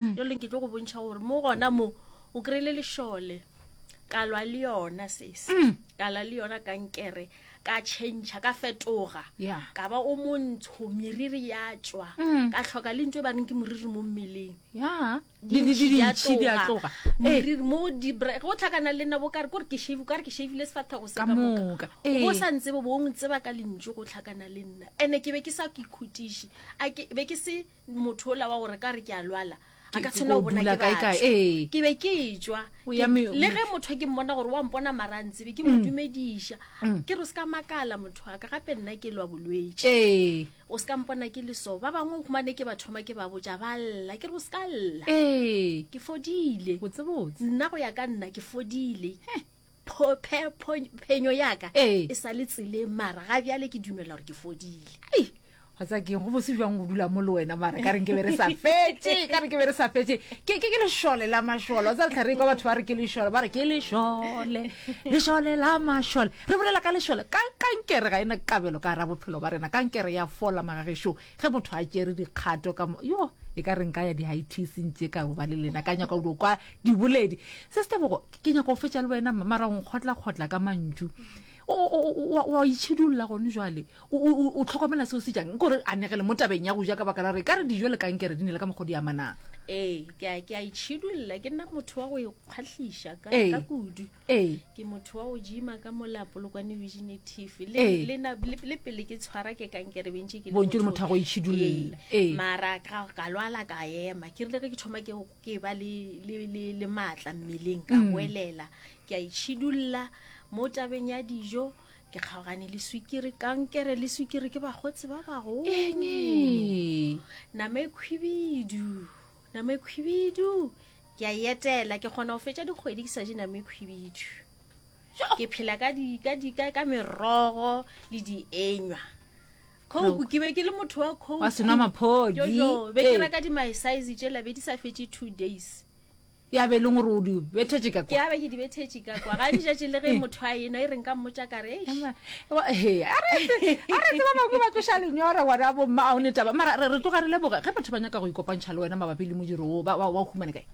yo leng ke tlo go bontšha gore mo gona mo o kry-ile lešole ka lwa le yona sese mm. ka la le yona kankere ka change ka fetoga ka ba o montsho meriri ya tswa mm. ka tlhoka le ntse ba reng ke moriri mo mmeleng meriri mo go tlhakana le nna bo kare kore ke shave kare ke shavile sefatlhego se ka moka go sa ntse bo bong tseba ka lentso go tlhakana le nna and-e ke be ke sa ke khutiše be ke se motho ola wa gore ka re ke a lwala a ka tshwanela go bona ke batho ke be ke etswa le ge motho ke mmona gore wa mpona marantsebe ke mo mm. dumediša mm. ke re o se ka makala motho wa ka gape nna ke lwa bolwetse o se ka mpona ke leso ba bangwe gomane ke ba thoma ke ba botša ba lla ke re o se ka lla ke fodile nna go ya ka nna ke fodile phenyo ya ka Ee. e sa le tseleng mara ga bjale ke dumela gore ke fodile Ei, wa tsa keng go bose jwang go dula mo le wena mara ka reng ke be re sa fetse ka re ke be re sa fetse ke ke- ke lešole la mašole wa tsa letlha re kwa batho ba re ke lešole ba re ke lešole lešole la mašole re bolela ka lešole ka kankere ga ena kabelo ka ra bophelo ba rena kankere ya fola magagešong ge motho a tšere dikgato ka yo e ka reng ka ya di-itc ntse ka ba le lena ka nyaka go kwa diboledi se setebogo ke nyaka go fetša le wena mara o nkgotlakgotla ka mantšu wa itšhidulola gone jale o tlhokomela seo se jang kore anegele mo tabeng ya go ja ka baka la gore e ka re dijo le kankere di ne le ka mokgodi ya manang ee ke a itšhidulola ke nna motho wa go ikgwatlhiša ka kudu ee ke motho wa go jima ka mola polokwane virginitive Ee. le na- le- le pele ke tshwara ke kankere bentše ke le Bontše le motho wa go itšhidulla. Ee. Ee. mara ka ka lwala ka ema ke rile ge ke thoma ke ke ba le le le le matla mmeleng ka Mm. boelela ke a itšhidulla mo tabeng ya dijo ke kgaogane le swikiri kankere le swikiri ke bagotsi ba bagolo Eng ee. nama e khwibidu nama e khwibidu ke a e etela ke kgona go fetša dikgwedi ke sa je name khwibidu ke phela ka di- ka di- ka- ka merogo le dienywa khouku ke be ke le motho wa khouku Wa senwa maphodi. Jojo, be ke Ee. reka di-mysize tšela be di sa fetše two days ya be e leng gore o di bethetše ka ke kwa abe ke di bethetše ka kwa ga di jatše le ge motho a enwa e reng ka mmotša ka re "Eish, Emma, tseba bangwe ba tloša lenyora gona bomma a o ne taba mara re tloga re leboga ge batho ba nyaka go ikopantšha le wena mabapi le modiro o ba o humane kae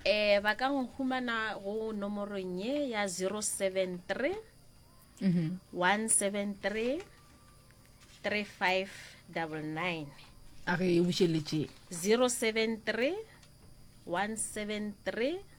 um ba ka go humana go nomorong ye ya 073 173 3599 a re e bušeletseng 073 173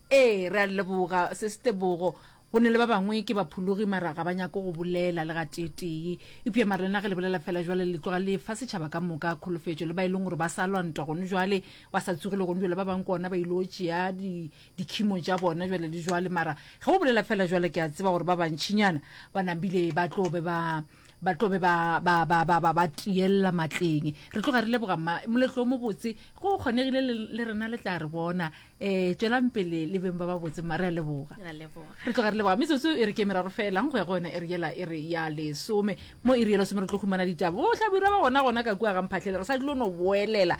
Ee, re a le leboga, Sesi Tebogo. Go na le ba bangwe ke baphologi mara ga ba nyake go bolela le gateetee. Eupša mara lena ge le bolela feela jwale le tloga le fa setšhaba ka moka kholofetšo, le ba e leng gore ba sa lwa ntwa gone jwale, ba sa tsogile gone jwale, ba bangwe ke gona ba il'o tšea di, dikhimo tša bona jwale le jwale. Mara ge o bolela feela jwale ke a tseba gore ba bantšinyana ba nabile ba tlo be ba. ba tlo be ba ba ba ba ba ba tiella matleng re tloga re leboga mma moletlo o mobotse go kgonegile le le rena le tla re bona um tswelang pele le beng ba ba botse mma re a leboga Ra leboga. re tloga re leboga metsotso e re ke meraro felang go ya go yona e re yela e re ya lesome mo e re yela some re tlo humana ditaba o tlabira ba gona gona ka kua ga mphatlhele re sa dilo no boelela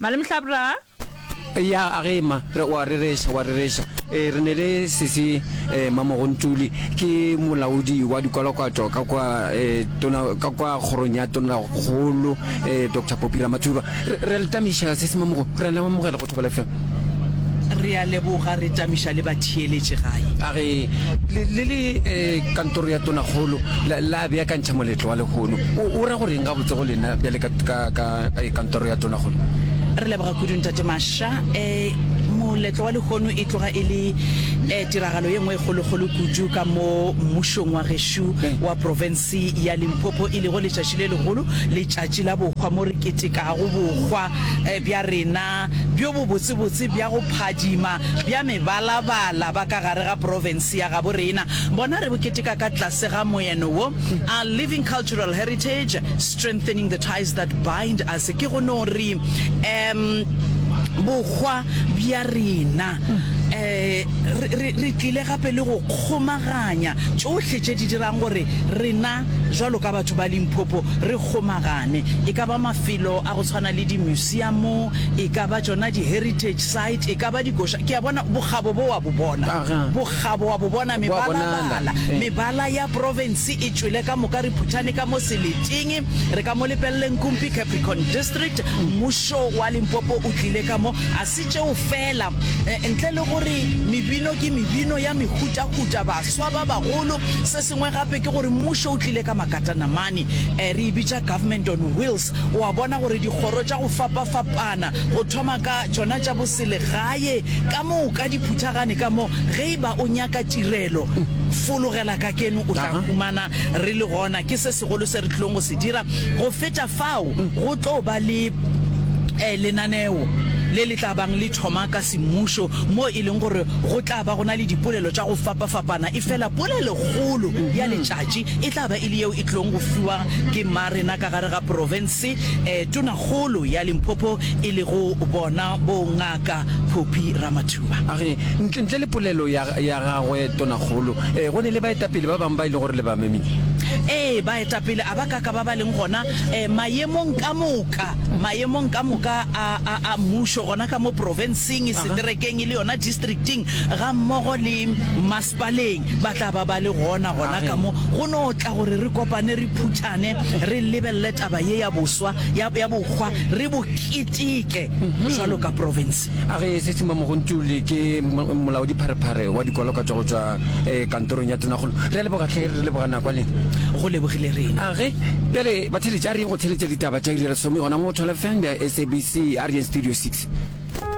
Malemhlabra, Eya a ge ma, re o a rereša, o a rereša. Ee, re ne le Sesi eh, Mamogontuli, ke molaodi wa dikwalokwato ka kwa eh, tona, ka kwa kgorong ya Tonakgolo eh, Doctor Poppy Ramathuba. Re, re a le tamiša, Sesi Mamogo, re a le amogela go Thobela FM. Re a leboga, re tamiša le batheeletši gae. A ge le, le le eh, kantoro ya Tonakgolo la, la beakantšha moletlo wa lehono, o, o ra go reng gabotse go lena bjale ka, ka, ka Ee, Kantoro ya Tona kgole. Re leboga kudu Ntate Masha. E, moletlo wa lehono e tloga e le e, tiragalo ye nngwe e kgolokgolo kudu ka mo mmušong wa gešo wa profense ya Limpopo e lego letšatši le legolo, letšatši la bohwa mo re ketekago bohwa e, bja rena bjo bobotsebotse bja go phadima bja mebalabala ba ka gare ga profense ya gabo rena. Bona re bo keteka ka tlase ga moeno wo, Our Living Cultural Heritage, Strengthening the ties that bind us, ke go no re um bohwa bja rena um re re tlile gape le go kgomaganya tšohle tše di dirang gore rena jwalo ka batho ba Limpopo re kgomagane, e ka ba mafelo a go tshwana le dimuseamo, e ka ba tšona di-heritage site, e ka ba dikoša. Ke a bona bokgabo bo wa bo bona, bokgabo wa bo bona, mebalabala, mebala ya province. e tšwele ka moka re phuthane ka mo seleteng re ka mo lepeleleng kumpi capricorn district mmušo wa limpopo o tlile ka mo a se tšeo fela eh, ntle le gore mebino ke mebino ya mehutahuta baswa ba bagolo se sengwe gape ke gore mmušo o tlile ka makatanamane eh, re e bitša government on wheels o a bona gore dikgoro tša go fapafapana go thoma ka tšona tša boselegae ka moka di phuthagane ka mo ge e ba o nyaka tirelo fologela ka Keno o tla humana re le gona. Ke se segolo se re tlilong go se dira. Go feta fao, go tlo ba le eh, lenaneo le le tla bang le thoma ka semmušo, moo e leng gore go tla ba go na le dipolelo tša go fapafapana, efela polelegolo ya letšatši e tla ba e le yeo e tlilong go fiwa ke mmarena ka gare ga profense, eh, tonakgolo ya Limpopo e lego bona bo Nga. ka Poppy Ramathuba. A re ntle, ntle le polelo ya, ya gagwe Tonakgolo, eh, go ne le baetapele ba bangwe ba e le gore le ba memile. Ee, baetapele a ba ka ka ba ba leng gona eh, mayemong ka moka, mayemong ka moka a, a, a mmušo, gona ka mo profenseng, seterekeng e le yona districting, gammogo le mas. Baleng ba tla ba ba le gona gona ka mo go no tla gore re kopane, re phuthane, re lebelele taba ye ya boswa, ya, ya bokgwa, re bo keteke bjalo ka profense. A ge se se mamogontuli ke mo, molaodipharephare wa dikwalokatšwa go tšwa eh, kantorong ya tonakgolo. Re a leboga, hle, re leboga nako, le. Go lebogile rena. A ge, bjale, batheeletši, a re yeng go theeletša ditaba tša iri ya lesome gona mo Twelve ya SABC, a re yeng Studio Six.